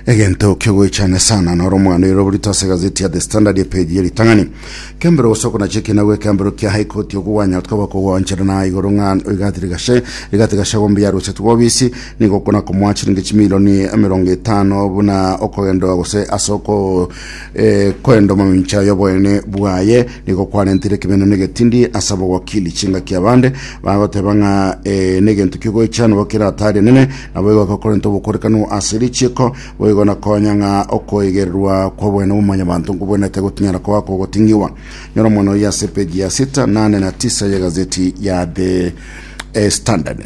egento kiogoichana sana noro omwana oyo roborito ase egazeti ya the standard epeji eritang'ani kembero gosoko nache ekina gwe kembero kia high court okogwanya tokaba kogwanchera na igoro ng'a rigati rigashe rigati gashe gombe yarochete gwobisi nigo okona komoa chiringi chimilioni emerongo etano buna okogendoa gose ase oko eh, koenda omamincha yoboene bwaye nigo kwarentire ekemeno na egetindi ase abogwakili chingaki abande bagoteba ng'a eh, negento kiogoichana bokeratari enene Naboigo akokorenta obokorekano ase richiiko, boigo na konya ng'a okoigererwa kw'obwene bw'omonyabanto nkobwenete gotinyara koba kogoting'igwa. Nyora omwana oyio ase epeji ya sita na ane na tisa y'egazeti ya The eh, Standard.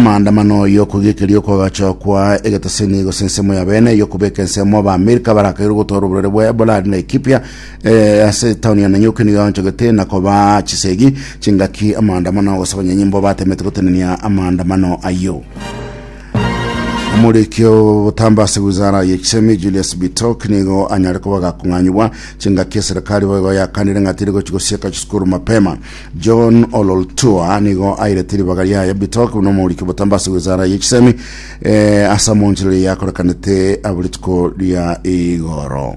maandamano y'okogikeria okogacha kwa egeteseni gose ensemo ya bene y'okobeka ensemo ba Amerika barakaire gotwara oborere bwa Ebola ari Laikipia Eh, ase taoni ya Nanyuki nigo yaonchogete na koba chisegi chingaki amaandamano agosakonya nyimbo batemete gotenenia amaandamano ayio omorikio botamba ase wizara ya chisemi Julius Bitok nigo anyare koba gakong'anyigwa chingaki eserikali boigo yakanire ng'a tiri gochi gosieka chisukuru mapema John Ololtua nigo airete ribaga riaye Bitok buna omorikio botamba ase wizara ya chisemi eh, ase amonchorere yakorekanete abo rituko ria igoro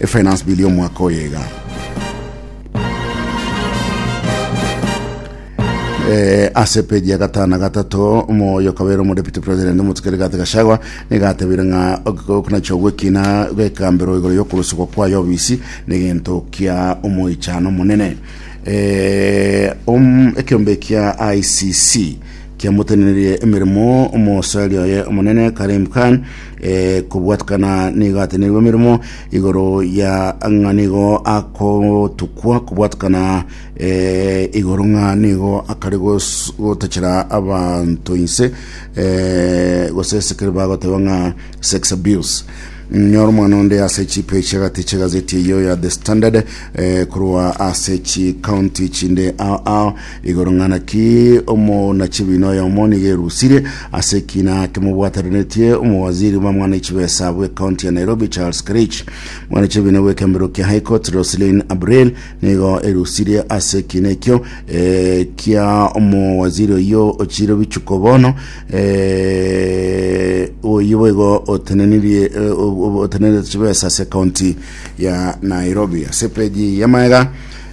Efinance Bill y'omwaka oyo iga. Eh, ase peji ya gatano na gatato moyo kabere omo deputy president omotuke rigate gashagwa nigatebire ng'a okonacha ogwekina gwekambero igoro yokorusugwa kwayo obisi negento kia omoichano monene eh, um, ekiombe kia ICC kiamotenererie emeremo omosaria oye omonene Karim Khan Eh, kobwatukana nigo atenerwe emeremo igoro ya ng'a nigo akotukwa kobwatukana eh, igoro ng'a nigo akare gos- gotachera abanto inse eh, gose esekere bagoteba ng'a sex abuse nyora omwana onde ase chipe chiagati chiagazeti eyo ya the standard eh, korwa ase chikaunti chinde ao ao Igoro ng'a naki omoona-chibina oyomo nigo erusire ase ekina kimobwateranetie omowaziri bwa mwana chibesa bw'ecounty ya Nairobi Charles Kerich. Mwana chibina bw'ekembero kia High Court Roselyn Abril nigo erusire ase ekina ekio eh, kia omowaziri oyio ochire bichuko bono eh, oyio boigo otenenirie eh, obo- otenenerete chibesa ase county ya Nairobi ase peji ya maega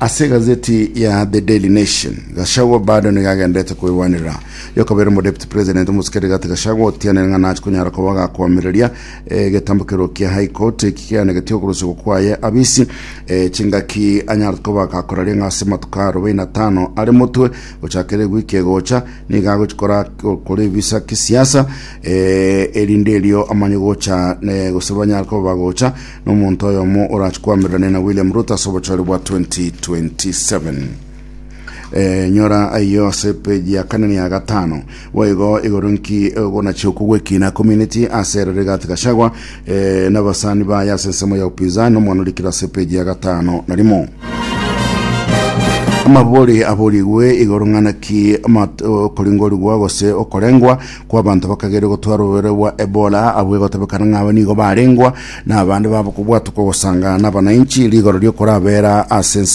Ase egazeti ya The Daily Nation, Gachagua bado nigo agenderete kwegwanera yokobera omodepute president omosike Rigathi Gachagua otianire ng'a nachi konyara koba gakoamereria eh, egetambo kerwo kia High Court eki keanegeti okorosegwa kwaye abisi eh, chingaki anyarete koba gakoraria ng'a ase matuko arobaini atano are motwe gochakera egwiki egocha nigo agochikora kore ebisa kisiasa eh, erinde erio amanye gocha eh, gose banyare koba bagocha Nomonto oyomo orache koamererania na William Ruto ase obochore bwa 2027. Eh, nyora ayo ase peji ya kane na ya gatano boigo igoro nki ogonachia okogwekina community ase ere Rigathi Gachagua eh, n'abasani baye ase ensemo ya upinzani nomwana orikire ase peji ya gatano na rimo amabori aborigwe igoro ng'ana ki mat- okoringorigwa gose okorengwa kw'abanto bakageria gotwara oborwaire bwa Ebola, abwo egotebekana ng'a aba nigo barengwa, na abande babo kobwatwa kogosangana nabanainchi rigoro ri'okorabera ase ensemo.